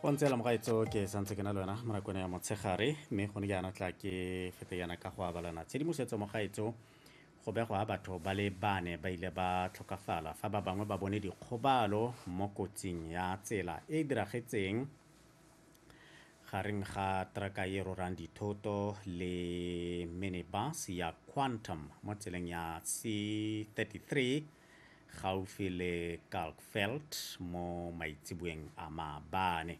go ntse la mogaetso ke santse ke na le wena mo nakong ya motshegare mme gone ke yana tla ke fete yana ka go abalana tshedimosetso mogaetso go begwa batho ba le bane ba ile ba tlhokafala fa ba bangwe ba bone dikgobalo mo kotsing ya tsela e e diragetseng gareng ga traka e rorang dithoto le minibus ya quantum mo tseleng ya c 33 gaufi le Kalkveld mo maitseboeng a maabane.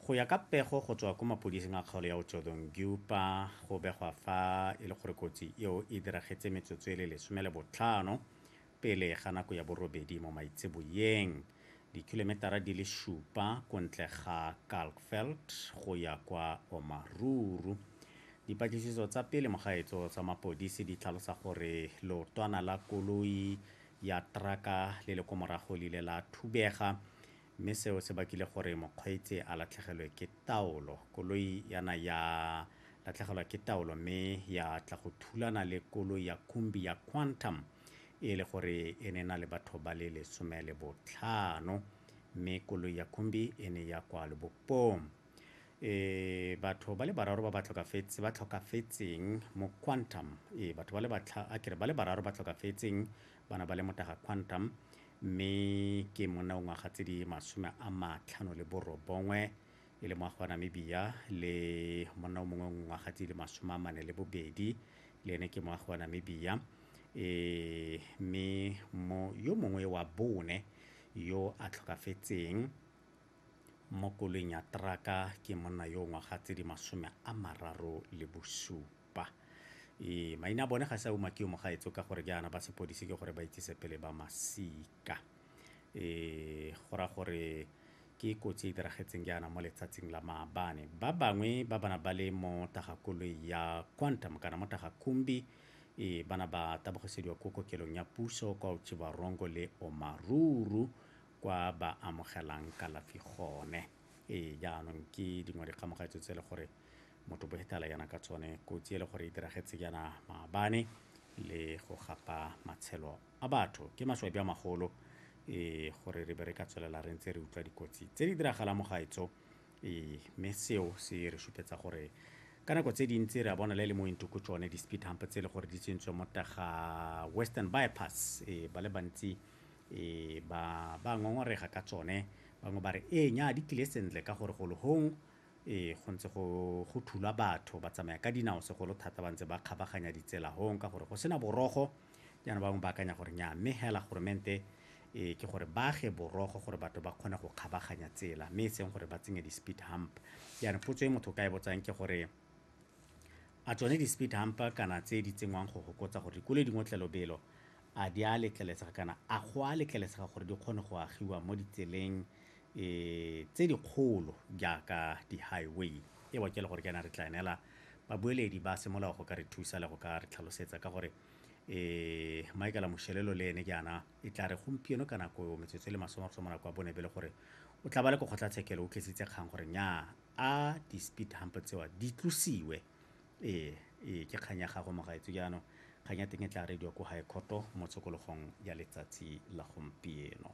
Go ya ka pego go tswa ko mapodising a kgaolo ya Otjodongyupa, go begwa fa e le gore kotsi eo e diragetse metsotso e le lesome le botlhano pele ga nako ya borobedi mo maitseboeng. Dikilometara di le supa ko ntle ga Kalkveld go ya kwa Omaruru. Dipatlisiso tsa pele mo gaetso tsa mapodisi di tlhalosa gore leotwana la koloi ya teraka le le ko morago le ile la thubega mme seo se bakile gore mokgweetsi a latlhegelwe ke taolo. Koloi yana ya latlhegelwa ke taolo mme ya tla go thulana le koloi ya Kumbi ya Quantum e le gore e ne na le batho ba le lesome le botlhano mme koloi ya khumbi e ne ya kwa lobopong e batho ba le bararo ba ba tlhokafetse ba tlhokafetseng mo quantum e batho ba le batlha a kere ba le bararo ba tlhokafetseng bana ba le motaga quantum mme ke monna o ngwaga tse di masome a matlhano le borobongwe e le moagi wa Namibia le monna o mongwe o ngwaga tse di le masome a mane le bobedi le ene ke moagi wa Namibia e mme mo yo mongwe wa bone yo a tlhokafetseng mo koloing ya traka ke monna yo ngwaga tse di masome a mararo le bosupa e maina a bone ga sa uma ke yo mogaetso ka gore jaana ba sepodisi ke gore ba itsise pele ba masika ka. Go raya gore ke kotsi e e diragetseng jaana mo letsatsing la maabane. Ba bangwe ba bana ba le mo tagakoloi ya Quantum kana mo tagakumbi e bana ba tabogisediwa ko kokelong ya puso kwa Otjiwarongo le Omaruru kwa ba amogelang kalafi gone. Ee, jaanong ke dingwe dikgamogatso tse e le gore motho boetala yana ka tsone kotsi e le gore e diragetse yana maabane le go gapa matshelo a batho ke maswabi a magolo um gore re be re ka tswelela re ntse re utlwa dikotsi tse di diragalang mo gaetso um mme seo se re supetsa gore ka nako tse dintsi re a bona le le mo intoko tsone di-speed hump tse e le gore di tsentswe mo taga western bypass e ba le bantsi e ba ba ngongorega ka tsone bangwe ba re ee nya di tlile sentle ka gore golo gong e go ntse go thulwa batho ba tsamaya ka dinao segolo thata ba ntse ba kgabaganya ditsela gong ka gore go sena borogo Jaana ba bangwe ba akanya gore nnyaa, mme hela goromente e ke gore ba age borogo gore batho ba kgone go kgabaganya tsela mme e seng gore ba tsenye di-speed hump. Jaana potso e motho ka e botsang ke gore a tsone di-speed hump kana tse di tsenngwang go gokotsa gore dikoloi di ngotle lobelo a di a letlelesega kana a go a letlelesega gore di kgone go agiwa mo ditseleng e tse dikgolo jaaka di-highway. E wa ke le gore ke yana re tla neela babueledi ba semolao go ka re thusa le go ka re tlhalosetsa ka gore eh Michael Moshelelo le ene jaana e tla re gompieno ka nako eo metsotso e le masome go mo nako ya bone be le gore o tla ba le ko kgotlatshekelo o tlisitse kgang gore nya a di-speed hump tsewa di tlosiwe ee ee ke kgang ya gago mogaetso jaanong kgang ya teng e tla radio ko high courto mo tshokologong ya letsatsi la gompieno